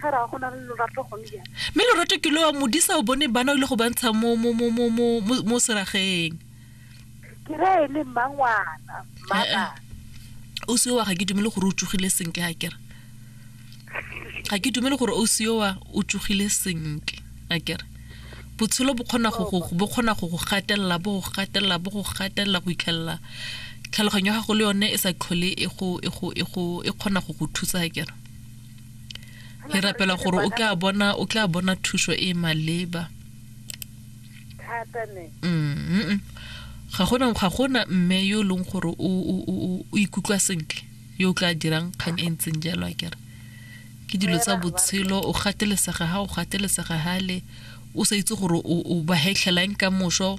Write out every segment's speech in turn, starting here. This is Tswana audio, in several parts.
ga ra go na le lorato gone jang mme lorato ke lo wa modisa o bone bana o ile go bantsha mo mo mo mo mo mo- mo serageng ke ra e le mmangwana mmabana o seowa ga ke dumele gore o tsogile senke a kere ga ke dumele gore o seowa o tsogile senke a kere botshelo bo kgona go go- bo kgona go go gatelela bo go gatelela bo go gatelela go ikhelela tlhaloganyo ya gago le yone e sa tlhole e go e go e go e kgona go go thusa a kere Re rapela gore o tla bona o tla bona thuso e e maleba. Thata ne. Mm. Ga gona ga gona mme yo e leng gore o o o o ikutlwa sentle yo o tla dirang kgang e ntseng jalo a kere. Ke dilo tsa botshelo o gatelesega ha o gatelesega hale o sa itse gore o o ba hetlhela eng ka moso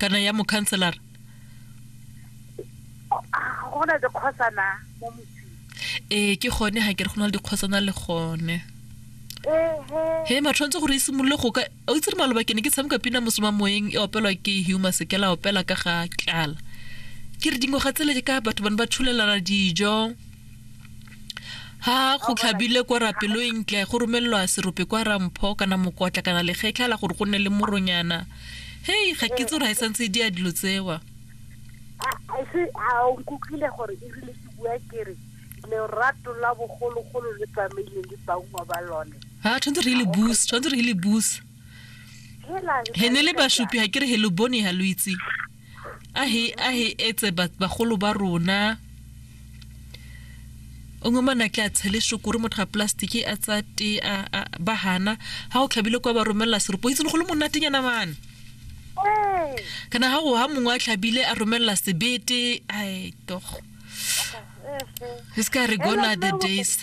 kana ya mokhanselara go na dikgosana mo motseng ee ke gone ga ke re go na le dikgosana le gone he ma tshwanetse gore e simolole go ka o itse re maloba ke ne ke tshameka pina mosoma moeng e opelwa ke huma sekela opela ka ga tlala ke re dingwaga tsele ka batho bane ba tshulelana dijo ha go tlhabile kwa rapelo e ntle go romelelwa serope kwa rampho kana mokotla kana legetlha la gore go nne le moronyana hei ga ke tse gore ga e santse e di a dilo tsewa ise a o nkutlwile gore e rile ke bua kere lerato la bogologolo le tsamaile le baungwa ba lone ha tshwanetse re le bus tshwanetse re le bus he ne le bashupi ga ke re he lo bone ga lo itse a he a he etse ba- bagolo ba rona o ngwe mana ke a tshele shokore motho a plastiki a tsa te a a- ba hana ha o tlhabile kwa ba romelela seropo itse le go le monatenyana mane Mm. kana ha o ha mongwe a tlhabile a romelela sebete ai togo Mhm. e se ka re gona the days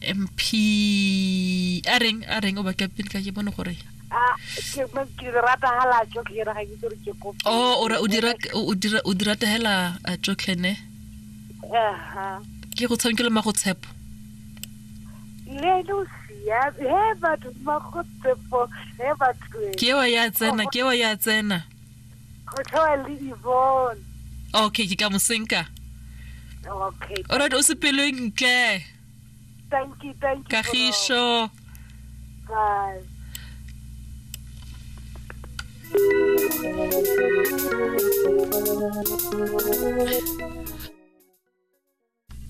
mp a reng a reng o ba captain ka ke bone gore Ah, ke mo- ke rata hala jo ke ra ga ke tsore ke kope. o o ra- o dira o dira o dira tahela a tsotlene Aha. ke go tshamekele ma go tshepo Le lo sia, he batho ba go tsepo, he batho. e. ke wa ya tsena ke wa ya tsena Go tshwa le Yvonne. okay ke ka mosenka Okay. alright o sepeleng tle Thank you, thank you. Kagiso. Bye.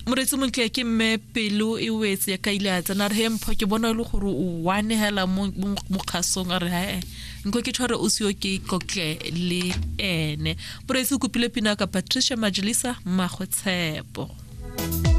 moretsi montle ke mme pelo e wetse ya ka ile a tsena re he mpho ke bona e le gore o one hela mo kgasong a re hae nko ke tshware o seo ke kotle le ene moretsi o kopile pina ka patricia majelisa mmagwe tshepo